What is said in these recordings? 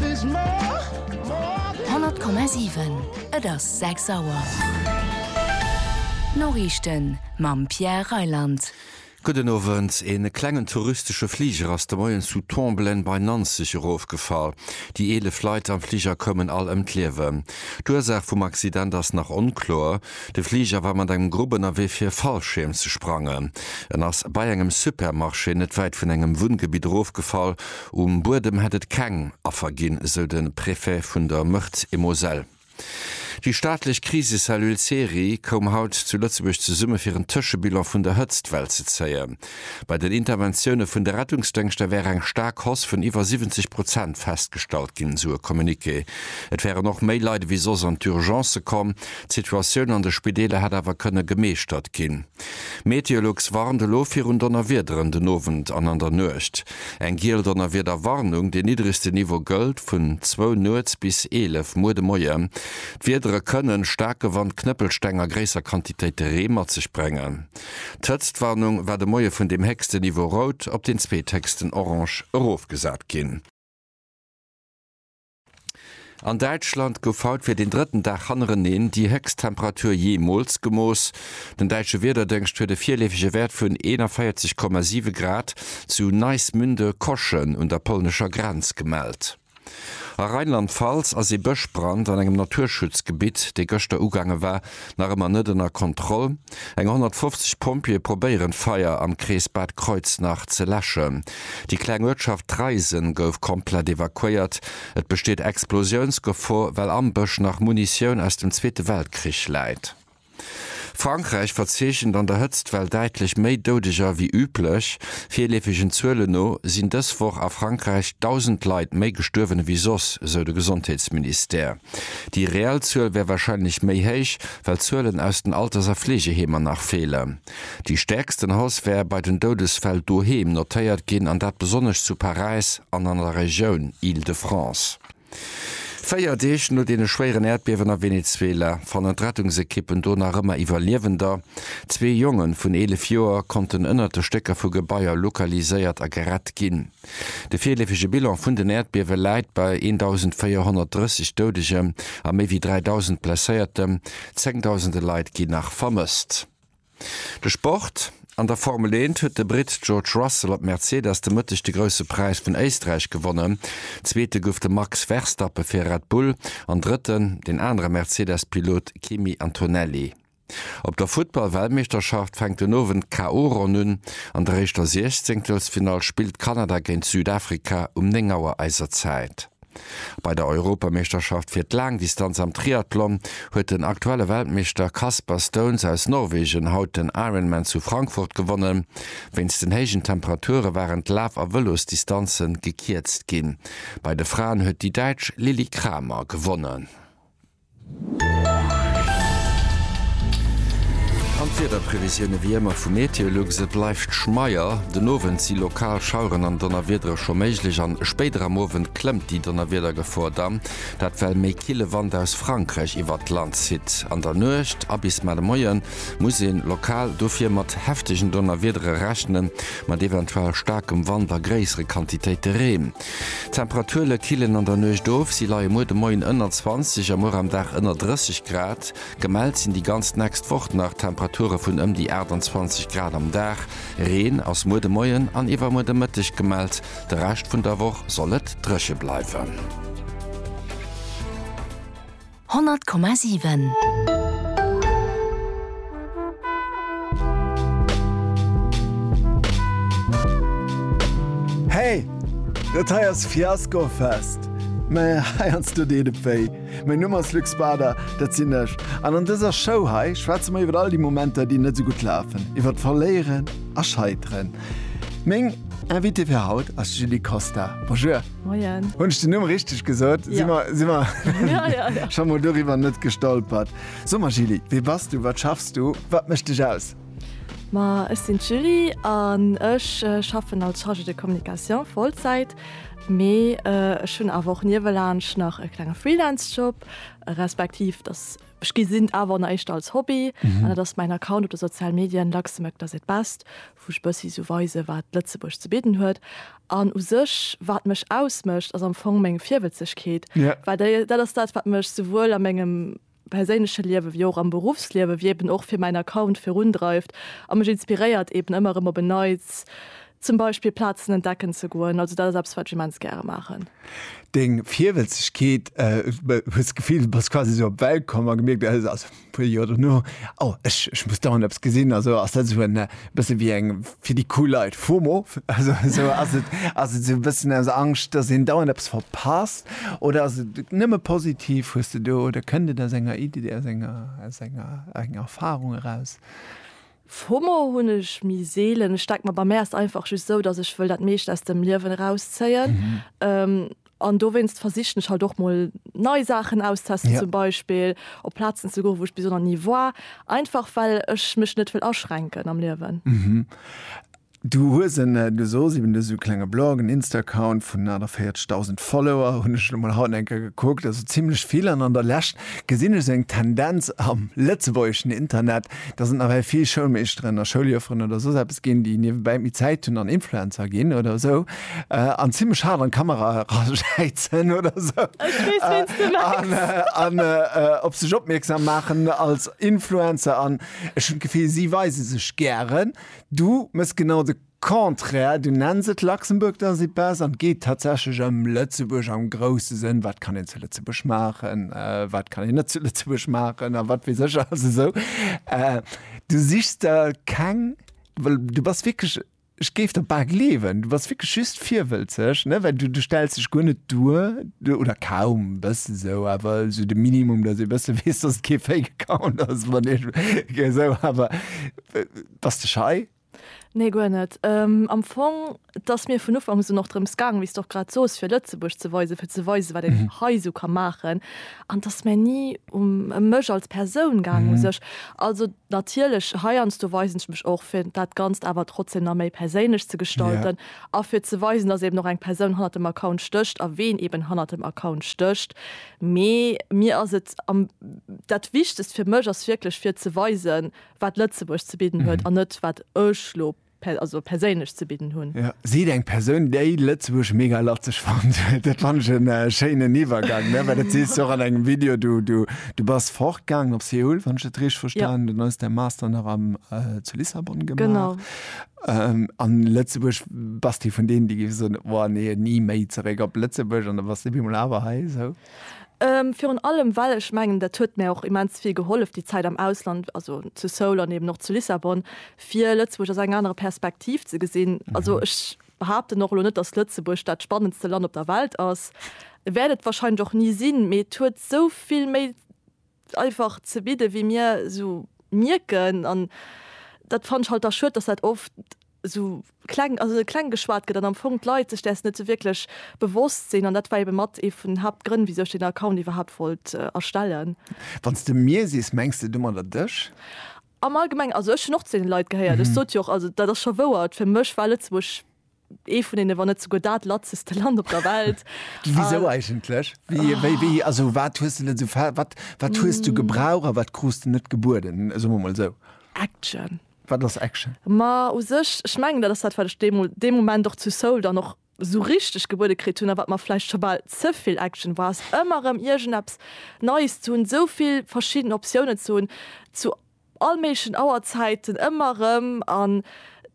100,7 Et ass 6 Auer. D'Noriichten mam Pierre Reyland. Gudden Owend. E klengen touristesche Fliger ass de Moien zu Tomblaine bei Nanzeg erofgefall. Déi 11 Leit am Fliger koumen all ëm d'Liewen. D'Ursaach vum Accident ass nach onkloer. De Fliger war mat engem Grupp ënnerwee fir e Fallschierm ze sprangen. En ass bei engem Supermarché net wäit vun engem Wunngebitt erofgefall. Um Buedem hätt et keng Affer ginn, esou de Préfet vun der Meurthe-et-Moselle. Déi staatlech Krisecellule CERI koum haut zu Lëtzebuerg zesumme fir en Tëschebilan vun der Hëtztwell ze zéien. Bei den Interventioune vun de Rettungsdéngschter wär eng staark Hausse vun iwwer 70 Prozent festgestallt ginn, esou e Communiqué. Et wären och méi Leit ewéi soss an d'Urgencë komm. D'Situatioun an de Spideeler hätt awer kënne gemeeschtert ginn. Meteolux warnt elo virun Donnerwiederen den Owend an an der Nuecht. Eng giel Donnerwiederwarnung, dee niddregste Niveau gëllt vun zwou nuets bis 11 muer de Moien. D'Wiedere kënnen staarke Wand, Knëppelsteng a gréisser Quantitéite Ree mat sech bréngen. D'Hëtztwarnung war de Moie vun deem héchsten Niveau rout op deen zweethéchsten orange erofgesat ginn. An Däitschland gouf haut fir den drëtten Dag hannereneen déi héchst Temperatur jeemools gemooss. Den däitsche Wiederdëngscht huet e virleefege Wäert vun 41,7 Grad zu Neismünde-Koschen un der polnescher Grenz gemellt. A Rheinland-Pfalz ass ee Bëschbrand an engem Naturschutzgebitt, dee gëschter ugaange war, nach ëmmer net ënner Kontroll. Eng 150 Pompjeeë probéieren d'Feier am Krees Bad Kreuznach ze läschen. Déi kleng Uertschaft Treisen gouf komplett evakuéiert. Et besteet Explosiounsgefor, well am Bësch nach Munitioun aus dem Zweete Weltkrich läit. Frankräich verzeechent an der Hëtztwell däitlech méi Doudeger wéi üblech. Virleefegen Zuelen no sinn dës Woch a Frankräich 1.000 Leit méi gestuerwen ewéi soss, sou de Gesondheetsministère. Déi reell Zuel wär wahrscheinlech méi héich, well d'Zuelen aus den Alters a Fleegeheemer nach feelen. Déi stäerksten Hausse wär bei den Doudesfäll doheem notéiert ginn, an dat besonnesch zu Paräis an an der Regioun Île-de-France. Véier Deeg no deene schwéieren Äerdbiewen a Venezuela fannen d'Rettungsekippen do nach ëmmer Iwwerliewender. Zwee Jonge vun 11 Joer konnten ënnert de Stécker vu Gebaier lokaliséiert a gerett ginn. De virleefege Bilan vun den Äerdbiewe läit bei 1.430 Doudegem a méi wéi 3.000 Blesséiertem, zéngdausende Leit ginn nach vermësst. De Sport, An der Formel 1 huet de Britt George Russell op Mercedes de Mëtteg de Grousse Präis vun Éisträich gewonnen. Zweete gouf de Max Verstappe fir Red Bull an Drëtten den anere Mercedes-Pilot Kimi Antonelli. Op der Futtball-Weltmeeschterschaft fänkt den Owend d'KO-Ronn un. An der éischter Siechzéngtelsfinall spillt Kanada géint Südafrika um 9 Auer eiser Zäit. Bei der Europameeschterschaft fir d'Laangdistanz am Triathlon huet den aktuelle Weltmeeschter Kasper Stauns aus Norwegen haut den Ironman zu Frankfurt gewonnen. Wéinst den héijen Temperature waren d'Laf a Vëlosdistanze gekierzt ginn. Bei de Fraen huet déi Däitsch Lilli Kramer gewonnen. An d'Wiederprevisioune wéi ëmmer vu Meteolux. Et bleift schmeier. Den Owend si lokal Schaueren an Donnerwiedere scho méiglech an spéider am Owend klëmmt déi Donnerwiedergefor dann, dat well méi kille Wand aus Frankräich iwwert d'Land zitt. An der Nuecht a bis mar de Moie muss ee lokal dofir mat heftegen Donnerwiedere rechnen, mat eventuell staarkem Wand a gréissere Quantitéite Reen. D'Temperaturele killen an der Nuecht of, si leie muer de Moien ënner 20 a muer am Dag ënner 30 Grad. Gemellt sinn déi ganz nächst Woch nach Temperature vun ëm déi 28 Grad am Dag. Reen ass muer de Moien an iwwermuer de Mëtteg gemellt, de Rescht vun der Woch soll et dréche bleiwen. 100,7. Hey! Dat hei ass Fiasco Fest. Mä heiansdo deet et wéi. Mäin Numm ass Luc Spada, dat sinn ech. An an dëser Show hei schwätze mer iwwer all déi Momenter, déi net esou gutt lafen, iwwer d'Verléieren a Scheiteren. Meng Invitée fir haut ass d'Julie Costa. Bonjour! Moien. Hunn ech den Numm richteg gesot? Si mer si mer Ja, ja, ja. scho mol doriwwer net gestolpert. So mal, Julie, wee bass du, wat schaffs du, wat mécht dech aus? Ma ech sinn d'Julie an ech schaffen als Chargée de communication Vollzäit, mee ech hunn awer och niewelaanscht nach e klenge Freelance-Job, respektiv dass ech gesinn awer nach éischter als Hobby an dat ass mäin Account op de sozial Medien Luxembourg does it best, wou ech e bëssi sou weise wat Lëtzebuerg ze bidden huet. An u sech wat mech ausmécht ass am Fong meng Virwëtzegkeet, well déi dat ass dat wat mech souwuel a mengem perséinleche Liewe wéi och am Beruffsliewe wéi eben och fir mäin Account virundreift a mech inspiréiert eben ëmmer erëm op en Neits zum Beispill Plazen entdecken ze goen. Also dat ass eppes wat ech immens gäre maachen. Deng Virwëtzegkeet, hues d'Gefill du bass quasi sou op d'Welt komm a gemierkt, also Puer Joer dono, oh, ech, ech muss dauernd eppes gesinn, also ass dat esou en bësse wéi eng, fir déi cool Leit, FOMO, also esou, ass et, ass et esou e bëssen aus Angscht, datt een dauernd eppes verpasst oder ass et nëmme positiv? Hues de do, oder kënnt et aus enger Id, aus enger, aus enger, enger Erfarung eraus? FOMO hunn ech méi seelen. Ech denke mer, bei mär ass et einfach just esou, datt ech wëll dat meescht aus dem Liewen erauszéien. An dowéinst versichen ech halt och mol nei Saachen auszestesten. Zum Beispill op Plazen ze goen, wou ech bis elo nach ni war, einfach well ech mech net wëll aschränken am Liewen. Du hues en, du sos eben, du hues esou e klenge Blog, en Insta-Account vun 48.000 Follower, hunn ech elo mol haut eng Kéier gekuckt, also zimlech vill. An an der Lescht gesinn ech esou eng Tendenz am lëtzebuergeschen Internet, dass et nawell vill Schoulmeeschteren a Schouljufferen oder soss eppes ginn, déi niewebäi méi Zäit hunn an Influencer ginn oder esou. Äh, an zimlech haart an d'Kamera erajäizen oder esou. Ech weess, äh, wéins du mengs. Äh, an äh, äh, op sech opmierksam maachen als Influencer an ech hunn d'Gefill, si weise sech gären. Du mëss genau de Contraire, du nenns et Luxembourg dans y passe an et geet tatsächlech ëm Lëtzebuerg am grousse Sënn, wat kann een zu Lëtzebuerg maachen, äh, wat kann een net zu Lëtzebuerg maachen a wat weess ech alles esou. Äh, du sichs der keng, well du bass wierklech Ech géif der bal gleewen, du bass wierklech just virwëlzeg, ne, well du, du stells dech guer net duer, oder kaum, e bësse esou, awer esou de Minimum, datt ee bësse weess, datt et kee Fake Account ass, wann ee esou, awer bass de schei? Nee, guer net. Am Fong, et ass mir vun Ufanks un och drëms gaangen, wéi s de och grad soos, fir Lëtzebuerg ze weisen, fir ze weisen, wat een hei esou ka maachen, an et ass mä ni um, ëm mech als Persoun gaangen u sech. Also. Natierlech, heiansdo weisen ech mech och, fir dat Ganzt awer trotzdeem nach méi perséinlech ze gestalten yeah. a fir ze weisen, dass eben och eng Persoun hannert dem Account stécht a ween eben hannert dem Account stécht. Mee mir ass et am, dat Wichtegst fir mech ass wierklech, fir ze weisen, wat Lëtzebuerg ze bidden huet mm. an net, wat ech lo also perséinlech ze bidden hunn. Jo, sidd eng Persoun, déi Lëtzebuerg mega latzeg fannt. Dat fannt ech en schéinen Iwwergang, ne? Well dat sees de och an engem Video. Du, du, du bass fortgaangen op Seoul, wann ech dat richteg verstanen hunn. Jo. Dann hues de däi Master nach am, zu Lissabon gemaach. Genau. A Lëtzebuerg, bass de vun deenen, déi géife soen, Oua nee, ni méi zeréck op Lëtzebuerg, an da bass de op eemol awer hei, esou? Virun allem, well ech mengen, dat huet mär och immens vill gehollef, déi Zäit am Ausland, also zu Seoul an eben och zu Lissabon, fir Lëtzebuerg aus enger anerer Perspektiv ze gesinn. Also ech behaupten och elo net, datt Lëtzebuerg dat spannendste Land op der Welt ass, wäert et wahrscheinlech och ni sinn, mee et huet esou vill méi einfach ze bidden, wéi mir esou mierken. An dat fannen ech halt da schued, datt dat oft esou kleng, also kleng geschwat gëtt an am Fong d'Leit sech däers net esou wierklech bewosst sinn. An dat war ebe mat ee vun den Haaptgrënn, wisou ech deen Account iwwerhaapt wollt erstellen. Wann s de mir sees, mengs de domadder dech? Am Allgemeng, also ech hunn och zu deene Leit gehéiert, ech sot jo och, also dat ass scho wouer, fir mech war Lëtzebuerg ee vun deene, wann net souguer dat latzeste Land op der Welt. Wisou eigentlech? Also wat hues de net esou, wat wat hues du gebraucht a wat krus de net gebueden, soe mer emol esou? Action. Wat ass Action? Ma u sech, ech mengen dat ass dat wat ech deemol dee Moment och zu Seoul dann och, sou richteg gebuede kritt hunn, a wat mer vläicht scho bal ze vill Action war, ass ëmmer erëm iergendeppes Neies ze hunn, sou vill verschidden Optiounen ze hunn, zu all méiglechen Auerzäiten ëmmer erëm, an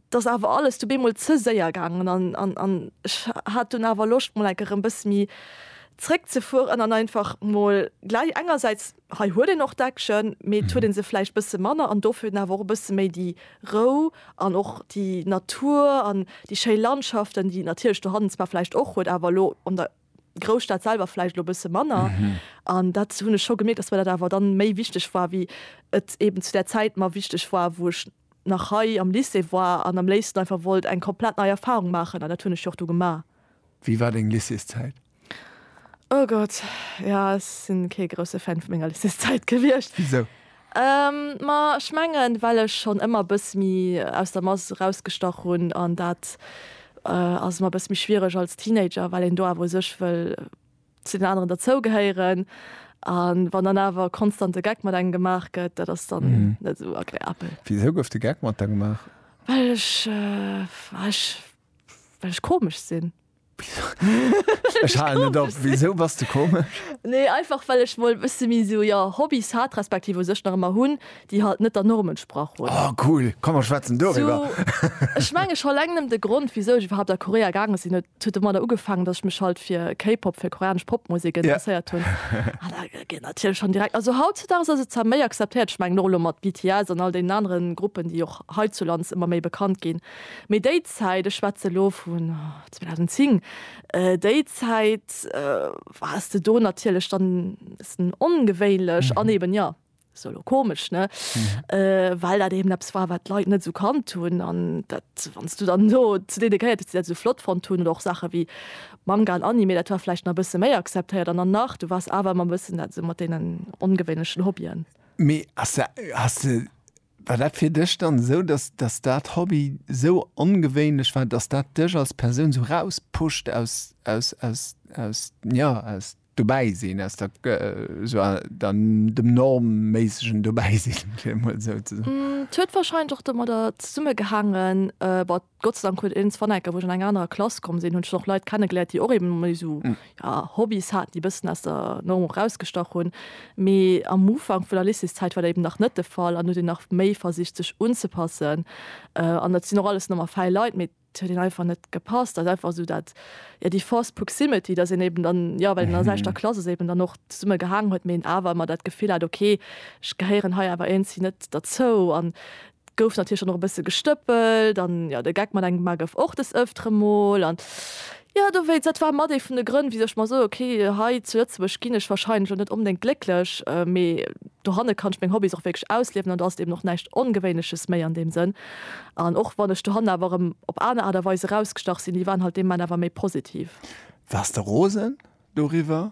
et ass awer alles dobee emol ze séier gaangen, an ech hat dunn awer Loscht mol enke rëm e bësse méi zréckzefueren an einfach mol gläich engersäits Hei huet een och d'Action, mee et huet ee se vläicht bësse manner an dofir huet een awer och e bësse méi déi Rou an och déi Natur an déi schéi Landschaften, déi et natierlech dohannen zwar vläicht och huet, awer elo an der Grousstad selwer vläicht elo e bësse manner. An dat hunn ech scho gemierkt, dass mir dat awer dann méi wichteg war, wéi et eeben zu där Zäit mer wichteg war, wou ech nach hei am Lycée war an am léifsten einfach wollt eng komplett nei Erfahrung maachen. An dat hunn ech jo och du gemaach. Wéi war deng Lycéeszäit? Oh Gott, jo ech sinn kee grousse Fan vu menger Lycéeszäit gewiescht. Wisou? Ma ech mengen well ech schonn ëmmer bëss méi aus der Mass erausgestach hunn an dat ass ëmmer bëss méi schwiereg als Teenager well een do awer u sech wëll zu den aneren derzou gehéieren an wann dann awer konstant de Geck mat engem gemaach gëtt dat ass dann net esou agreabel. Wisou gouf de Geck mat der gemaach? Well ech, ech, well ech komesch sinn. Ech halen net op, wisou bass de komesch? Nee, einfach well ech mol e bësse méi sou, jo, Hobbys hat, respektiv u sech nach ëmmer hunn, déi halt net der Norm entsprach hunn. Oh cool, komm mer schwätzen doriwwer. Ech mengen scho eleng nëmm de Grond wisou ech iwwerhaapt a Korea gaange sinn, huet huet domadder ugefaangen, dass ech mech halt fir K-Pop, fir koreanesch Popmusek interesséiert hunn. An da geet natierlech schonn direkt, also hautzudags ass et zwar méi akzeptéiert, ech mengen och elo mat BTS an all deenen anere Gruppen, déi och heizulands ëmmer méi bekannt ginn, mee déi. Zäit, ech schwätze elo vun 2010, déi Zäit wars de do natierlech dann e bëssen ongewéinlech an eeben, jo, se elo komesch, ne, well dat eeben eppes war, wat d'Leit net esou kannt hunn. An dat, wann s du dann do zu deene gehéiert hues, déi dat esou flott fonnt hunn, oder och Saache wéi Manga an Anime, dat war vläicht nach e bësse méi akzeptéiert. An dann nach, du wars awer ëmmer e bëssen dat esou mat deenen ongewéinlechen Hobbyen. Mee ass dat, has de War dat fir dech dann esou, dass dass dat Hobby esou ongewéinlech war, dass dat dech als Persoun esou rauspusht aus aus aus aus jo aus Dobäisinn, aus der esou der dem normméissegen Dobäisinn, fir emol esou ze soen? Et huet warscheinlech och domadder zesummegehaangen, Gott sei Dank huet een zwar enker, wou ech an eng anerer Klass komm sinn, hunn ech och Leit kennegeléiert, déi och eben méi esou, ja, Hobbys haten, déi e bëssen aus der Norm och erausgestach hunn. Mee am Ufank vun der Lycéeszäit war dat eben nach net de Fall an huet een nach méi versicht, sech unzepassen. An et sinn och alles normal fäi Leit, mee et huet een einfach net gepasst. Dat ass einfach esou dat, ja, déi forced proximity, dass een eben dann, jo, well een an der selwechter Klass ass, eben dann och zesumme gehaangen huet, mee een awer ëmmer dat Gefill hat, okay, ech gehéieren hei awer iergendwéi net derzou. An Gouf natierlech dann och e bësse gestëppelt an jo, de Geck mat engem Bma gouf och des Ëftere mol an jo, dowéinst, dat war mat ee vun de Grënn, wisou ech mer soe, ok, hei zu Lëtzebuerg ginn ech wahrscheinlech elo net onbedéngt glécklech, mee dohanne kann ech meng Hobbys och wierklech ausliewen an do ass et eben och näischt Ongewéinleches méi an deem Sënn. An och wann ech dohanne awer erëm op aner Aart a Weis erausgestach sinn, déi waren halt dee Moment awer méi positiv. Waars de rosen doriwwer?